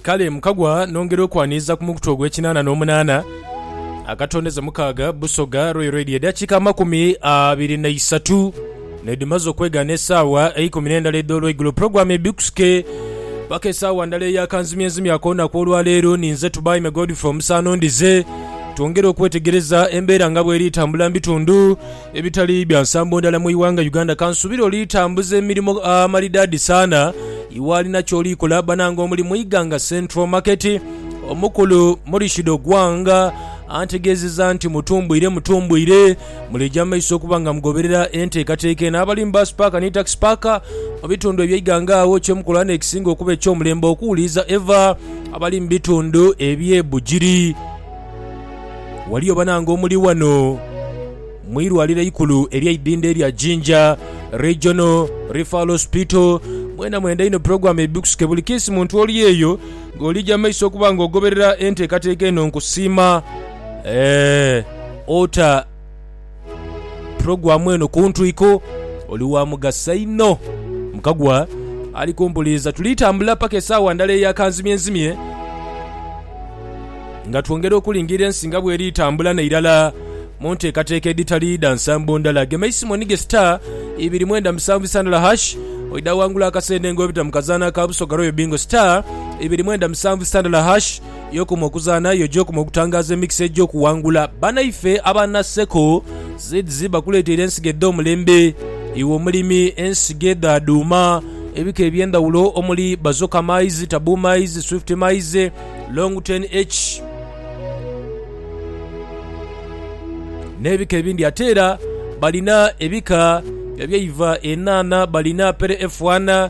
Kale mukagwa nongera okwaniriza ku mukutu ogw'ekinaana n'omunaana, akatondeza mukaaga, Busoga Royal Radio. Edakika amakumi abiri na isatu nedhimaze okwegaana esaawa eikumi n'endala edh'olweigulo. Pulogulaamu ebikusike paka esaawa ndala eya kanzimyenzimya akoonaku olwaleero. Ninze Tubaime Godfrey Omusaana Ondize. Twongere okwetegereza embeera nga bweri tambula mu bitundu. Ebitali bya nsambo ndala mu ighanga Uganda kansubire oli tambuza emirimo amalidadi saana iwalina kyoli kola banange omuli mu Iganga Central Market omukulu Murishid Ogwang antegezeza nti mutumbwire mutumbwire muli eja maiso okuba nga mugoberera entekateka eno abali mu bus park ni taxi park mu bitundu ebye Iganga agho kyemukola nekisinga okuba ekyomulembe okuwuliriza eva abali mu bitundu ebye Bugiri Waliyo banange omuli ghano mu irwaliro eikulu ery'eidhindha erya Jinja Regional Referral Hospital, mwena mwenda inho pulogulaamu ebibikusuke buli kiisi muntu oli eyo ng'oliija maiso okuba ng'ogoberera enteekateeka eno nkusiima. Eeh! Ota. Pulogulaamu eno ku ntwiko oli wa mugaso inho. Mukagwa ali kumpuliiza. Tuli tambula paka esaawa ndala eya kanzimyenzimye nga twongera okulingirira ensi nga bweri tambula n'eirala mu nteekateeka edhitali dha nsambo ndala. Gema eisimu onige star ibiri mwenda musanvu isandala hash oidha wangula akasente ng'obita mu kazaanha ka Busoga Royal Bingo star ibiri mwenda musanvu isandala hash. Y'okoma okuzaana, yo gy'okoma okutangaaza emikisa egy'okuwangula. Banaife aba Naseko Seeds bakuleeteire ensigo edh'omulembe. Iwe omulimi, ensigo edha dhuuma ebika eby'endhawulo omuli Bazoka Maize, Tabu Maize, Swift Maize, Long 10H, n'ebika ebindi. Ate era balina ebika eby'eiva enhaanha, balina Pere F1,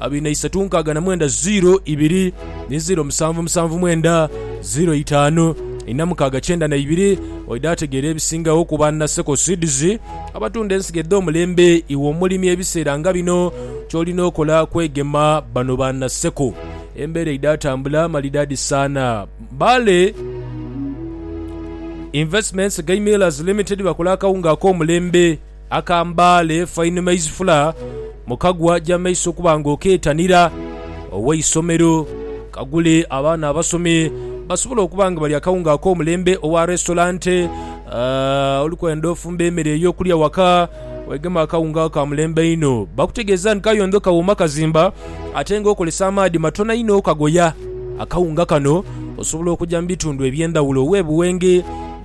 abiri na isatu nkaaga na mwenda ziro ibiri ni ziro musanvu musanvu mwenda ziro itaanu ina mukaaga kyenda na ibiri oidha ategeera ebisingagho ku ba Naseko Seeds abatunda ensigo edh'omulembe iwe omulimi ebiseera nga bino ky'olina okola kwegema bano ba Naseko embeera eidha atambula malidaadi saana Mbale Investments Gai Millers Limited bakola akawunga ak'omulembe Akambaale Fine Maize Flour mu kagwa gy'amaiso okuba nga okeetanira ow'eisomero. Kagule abaana abasomi basobole okuba nga balya akawunga ak'omulembe owa resitorante. Oli kwenda ofumba emere ey'okulya waka, weegema akawunga ako ka mulembe einho. Bakutegeeza nti kayondho kawooma kazimba ate nga okozesa amaadhi matono inho okagoya. Akawunga kano osobola okugya mu bitundu eby'endhaghulo ow'ebuwenge.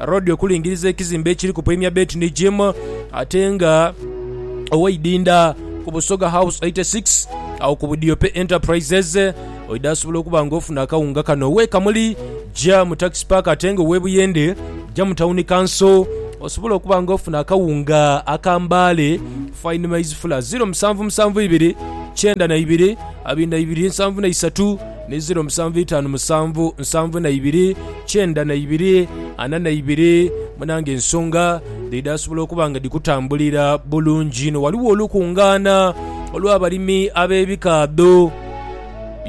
Road okulingiriza ekizimbe ekiri ku Premier Bet ni Gym ate nga owaidinda ku Busoga House 86 awo ku Budiope Enterprises oidha asobola okuba nga ofuna akawunga kano. Owe Kamuli ja mu Tax Park ate nga owe Buyende ja mu Town Council osobola okuba nga ofuna akawunga aka Mbale Fine Maize Flour 0772 92 73 ni ziro musanvu itaanu musanvu nsanvu na ibiri kyenda na ibiri ana na ibiri. Munange ensonga dhidhaasobola okuba nga dhikutambulira bulungi inho. Ghaligho olukungaana olw'abalimi ab'ebikaadho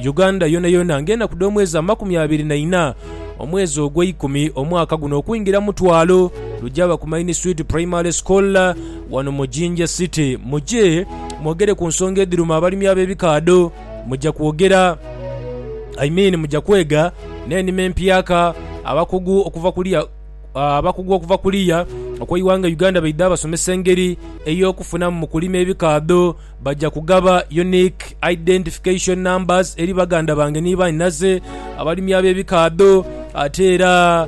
Uganda yonayona ng'enaku dh'omwezi amakumi abiri na ina omwezi ogweikumi omwaka guno okwingira mutwalo lugyaba ku Main Street Primary School wano mu Jinja City. Muje mwogere ku nsonga edhiruma abalimi ab'ebikaadho. Muja kwogera, I mean muja kwega n'enima empyaka, abakugu okuva kuliya abakugu okuva kuliya okw'eighanga Uganda baidha basomesa engeri ey'okufunamu mu kulima ebikaadho. Baja kugaba Unique Identification Numbers eri baganda bange ni banhinaze abalimi ab'ebikaadho ate era.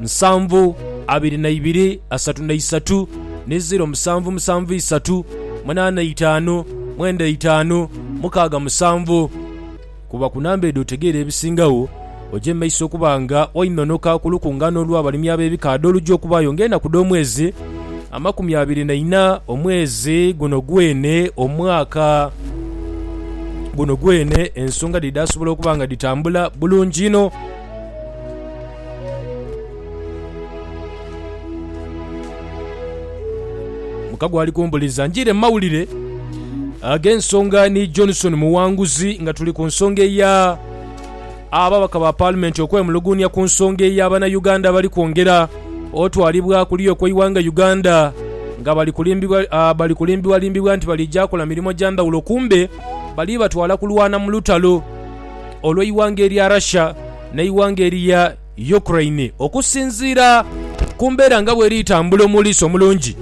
nsanvu abiri na ibiri asatu na isatu ni ziro musanvu musanvu isatu munaana itaanu mwenda itaanu mukaaga musanvu. Kuba ku namba edho otegeere ebisingagho, oje mu maiso okuba nga wainonoka ku lukungaana olw'abalimi ab'ebikaadha oluja okubaayo ng'enaku dh'omwezi amakumi abiri na ina omwezi guno gwene omwaka guno gwene. Ensonga dhe dhaasobola okuba nga dhitambula bulungi inho. Muka gwali kumbuliza njire mu mawulire ag'ensonga ni Johnson Muwanguzi nga tuli ku nsonga eya ababaka ba Paalimenti okwemuluguunia ku nsonga eya Bannayuganda abali kwongera otwalibwa kuliya okw'eighanga Uganda nga bali kulimbibwa ah, bali kulimbibwalimbibwa nti balija kola mirimo gya ndhawulo kumbe bali batwala kulwana mu lutalo. olw'eighanga erya Russia n'eighanga erya Ukraine okusinziira ku mbeera nga bweri tambula omuliisa omulungi.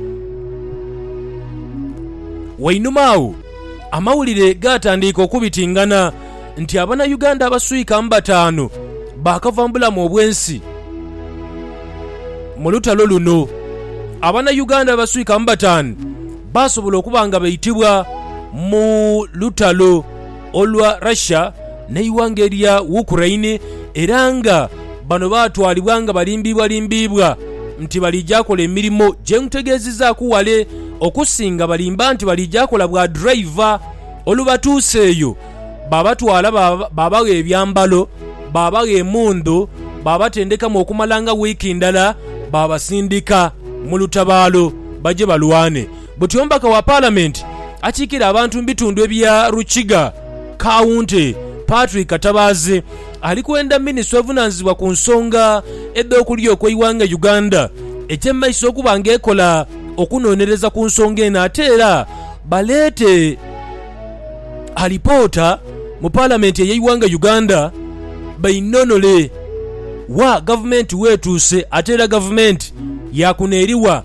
Wainuma agho amawulire gaatandiika okubitingana nti abanauganda abaswika mu bataanu baakava mu bulamu obw'ensi mu lutalo luno. Abanauganda abaswika mu bataanu baasobola okuba nga baitibwa mu lutalo. olwa Russia n'eighanga erya Ukraine era nga bano baatwalibwa nga balimbiibwalimbiibwa nti baliija kola emirimo gye nkutegeezizaaku ghale okusinga balimba nti baliija kola bwa driver. Olubatuusa eyo baabatwala baabagha ebyambalo, baabagha emundhu, baabatendekamu okumala nga wiiki ndala baabasindika mu lutabaalo baje balwane. Buti omubaka wa Palamenti akiikirira abantu mu bitundu ebya Rukiga Kawunti, Patrick Katabaazi ali kwenda minisitule evunaanyizibwa ku nsonga edh'okulyoka eighanga Uganda eky'emaiso okuba nga ekola okunonereza ku nsonga eno ate era baleete alipoota mu Palamenti ey'eighanga Uganda beinonole wa gavumenti wetuuse ate era gavumenti yakuneriwa.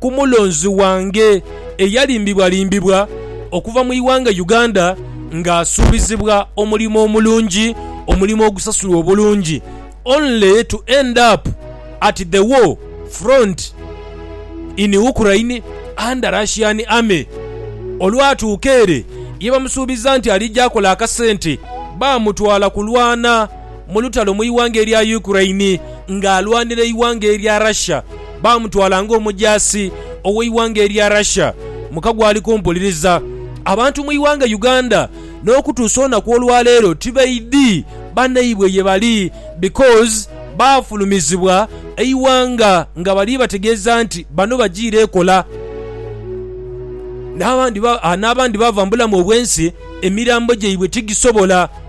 ku mulonzi wange eyalimbibwalimbibwa okuva mu ighanga Uganda nga asuubizibwa omulimo omulungi, omulimo ogusasulwa obulungi only to end up at the war front in Ukraine under Russian army. Olwatuuka ere yebamusuubiza nti alija akola akasente, baamutwala kulwana. mu lutalo mu ighanga erya Ukraine ng'alwanira eighanga erya Russia. Baamutwala ng'omujaasi ow'eighanga erya Russia mu kagwali kumpuliriza. Abantu mu ighanga Uganda n'okutuusa olunaku olwaleero tibaidhi banaibwe ye bali because baafulumizibwa eighanga nga bali bategeeza nti bano bajiire ekola n'abandi n'abandi baava mu bulamu obw'ensi emirambo gyaibwe tigisobola